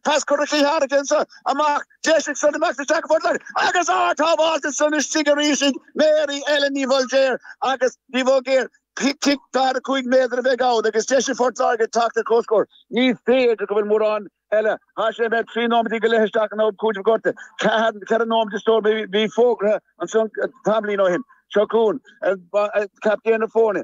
Pas cur Uí Harrigansa amach d'eisigh Sonny Max isteach fud leir agus ardshábháilt ansan istigh arís ag Mary Ellen Ní Bhoilgéir agus Ní Bhoilgéir cic daichead 5 méadar a bheidh ann agus deis ag Port Láirge teacht ar comhscór. Ní féidir go bhfuil mórán eile tá sé imithe 3 nóiméad go leith isteach in am cúitimh gortaithe 4 nóiméad is dóigh a bhí fógartha ansan tamaillín ó shin. Seo chugainn, captaen na foirne.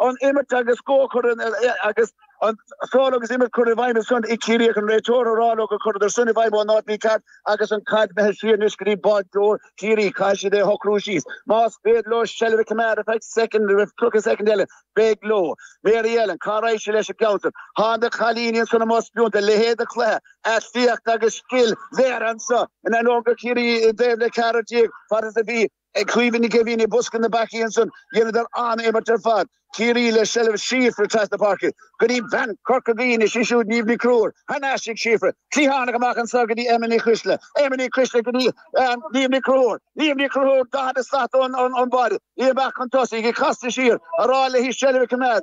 an imirt agus scórchorn agus an feoil agus imirt curtha i bhfeidhm ansan ag Ciarraí ag an réiteoir a rá leo gur cuireadar soin i bhfeidhm ón áit bhí cead agus an caid imithe siar anois go dtí báideoir Chiarraí caithfidh siad é a shocrú síos más féidir leo seilbh a coimeád fiche soicind nó tríocha soicind eile beidh leo Mary Ellen cá raghaidh sí leis an gceann so tá na cailíní ansan amuigh spíonta a leithéid de chluiche aclaíocht agus scil léirithe anso in ainneoin go raibh Ciarraí i dtaobh le ceathrar déag fad is a bhí ag Caoimhe Nic Éimhín i mbosca na bpeacaí ansan. Dheineadar an-imirt ar fad, Ciarraí le seilbh Síofra trasna na páirce go dtí bean Corca Dhuibhne, sin siúd Niamh Ní Chonchúir. Thar n-ais ag Síofra, cliathánach amach anso go dtí Emma Nic Coisdealbha. Emma Nic Coisdealbha go dtí Niamh Ní Chonchúir. Niamh Ní Chonchúir 40 slat ón mbáire. Í amach chun tosaigh, ag casadh siar, ag rá léi seilbh a choimeád.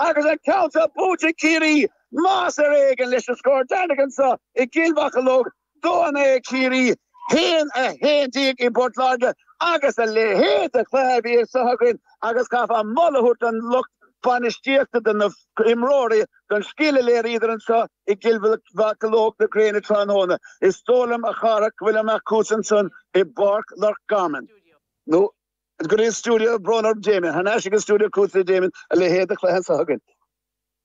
Agus an ceann seo buaite ag Ciarraí, más ar éigean leis an scór deireanach anseo i gCill Mocheallóg, 2, 9 ag Ciarraí 1, 11 ag Port Láirge agus a leithéid de chluiche a bhí anseo againn agus chaithfeá moladh a thabhairt don lucht bainistíochta, do na himreoirí, don scil a léiríodar anseo i gCill Mocheallóg na gréine tráthnóna. Is dóigh liom, a chara, go bhfuil an acthús ansan i bPáirc Loch Garman, nó. Go stiúideo brón orm Damien. Thar n-ais ag an stiúideo go dtí Damien, a leithéid de chluiche anseo againn.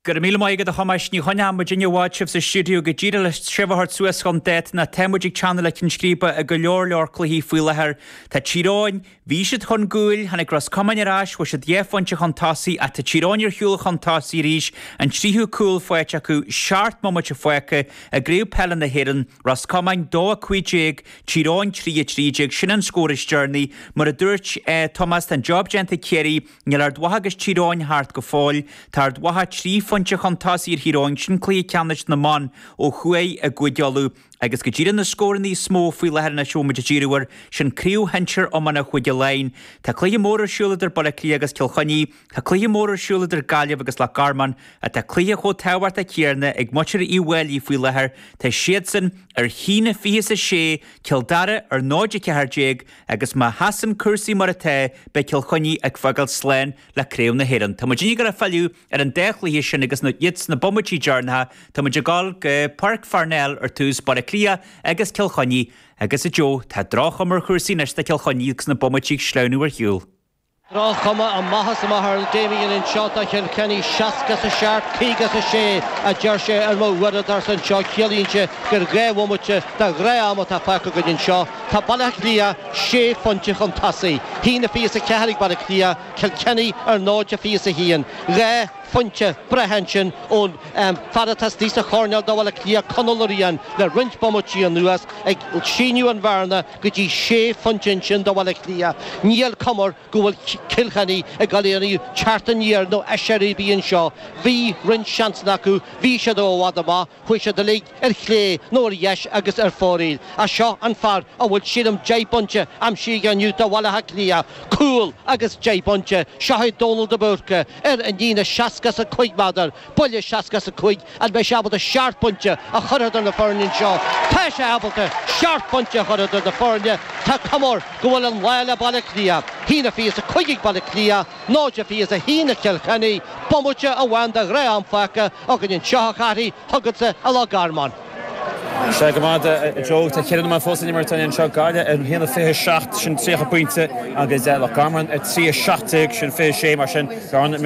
Go raibh míle maith agat a Thomáis, ní choinneoidh muid i bhfad sibh sa stiúideo go díreach le sibh a thabhairt suas chun date ná tá muid ag teannadh le cinn scríbe i go leor leor cluichí faoi láthair. Tá Tír Eoghain, bhí siad chun gcúil, tháinig Ros Comáin ar ais, chuaigh siad dhá phointe chun tosaigh ach tá Tír Eoghain ar shiúl chun tosaigh arís, an tríú cúl faighte acu seacht mbomaite fágtha i gCraobh Peile na hÉireann, Ros Comáin 2 15 i Tír Eoghain 3, 13, Sin an scór is deireanaí. Mar a dúirt Tomás, tá an job déanta ag Ciarraí. Níl Ard Mhacha agus Tír Eoghain thart go fóill. Tá Ard Mhacha trí phointe chun tosaigh ar Thír Eoghain, sin cluiche ceannais na mban ó thuaidh i gCúige Uladh. Agus go díreach na scóranna is mó faoi láthair anois a bhfuil muid ag díriú air, sin craobh shinsir iomána Chúige Laighean. Tá cluiche mór ar siúl idir Baile Átha Cliath agus Cill Chainnigh. Tá cluiche mór ar siúl idir Gaillimh agus Loch Garman ach tá cluiche chomh tábhachtach céanna ag muintir Uíbh Fháilí faoi láthair, tá siadsan ar a haon a fiche is a sé, Cill Dara ar 0, 14 agus má sheasann cúrsaí mar atá, beidh Cill Chainnigh ag fágáil slán le Craobh na hÉireann. Tá muidinne ag dul a fhilleadh ar an dá chluiche sin agus iad sna bomaití deireanacha, tá muid ag dul go Páirc Pharnell ar tús Baile Átha Cliath agus Cill Chainnigh agus a Joe. Tá droch-chuma ar chúrsaí anois do Chill Chainnigh agus na bomaití ag sleamhnú ar shiúl. Droch-chuma ar an mhaitheas amach ar Damien anseo do Chill Chainnigh, seasca is a seacht, caoga is a sé a deir sé ar m'uaireadóirse anseo, ciallaíonn sé gur dhá bhomaite de ghnáth-am atá fágtha againn anseo. Tá Baile Átha Cliath sé phointe chun tosaigh, a haon fiche is a ceathair ag Baile Átha Cliath, Cill Chainnigh ar náid fiche is a haon. Dhá phointe breise ansin ón fear atá istigh sa choirnéal do Bhaile Átha Cliath, Conal Ó Riain, le roinnt bomaití anuas, ag síneadh an bhearna. go dtí sé phointe ansin do Bhaile Átha Cliath. Níl cuma air go bhfuil Cill Chainnigh ag dul aon teacht aniar nó aiséirí a bheith anseo. Bhí roinnt seansanna acu, bhí siad ó i bhfad amach, chuaigh siad uilig ar chlé nó ar dheis agus ar foraoil. Ach seo an fear a bhfuil sílim deich bpointe aimsithe aige inniu do Bhaile Átha Cliath. Cúl agus deich bpointe. Seo é Dónal de Búrca ar an líne seasca is a cúig méadar. Buille seasca is a cúig an mbeidh sé ábalta seacht bpointe a chur idir na foirne anseo. Tá sé ábalta seacht bpointe a chur idir na foirne. Tá cuma air go bhfuil an lá le Baile Cliath. A haon fiche is a cúig ag Baile Cliath, náid fiche is a haon ag Cill Chainnigh. Bomaite amháin de ghnáth-am fágtha againn anseo, a Chathy, chugatsa i Loch Garman. Sea go maith, a Joe, tá ceithre nóiméad fós le n-imirt againn anseo. Gaillimh ar haon a fiche a seacht, sin tríocha pointe, agus Loch Garman ar trí a seacht déag, sin fiche sé. Mar sin, gan an méid.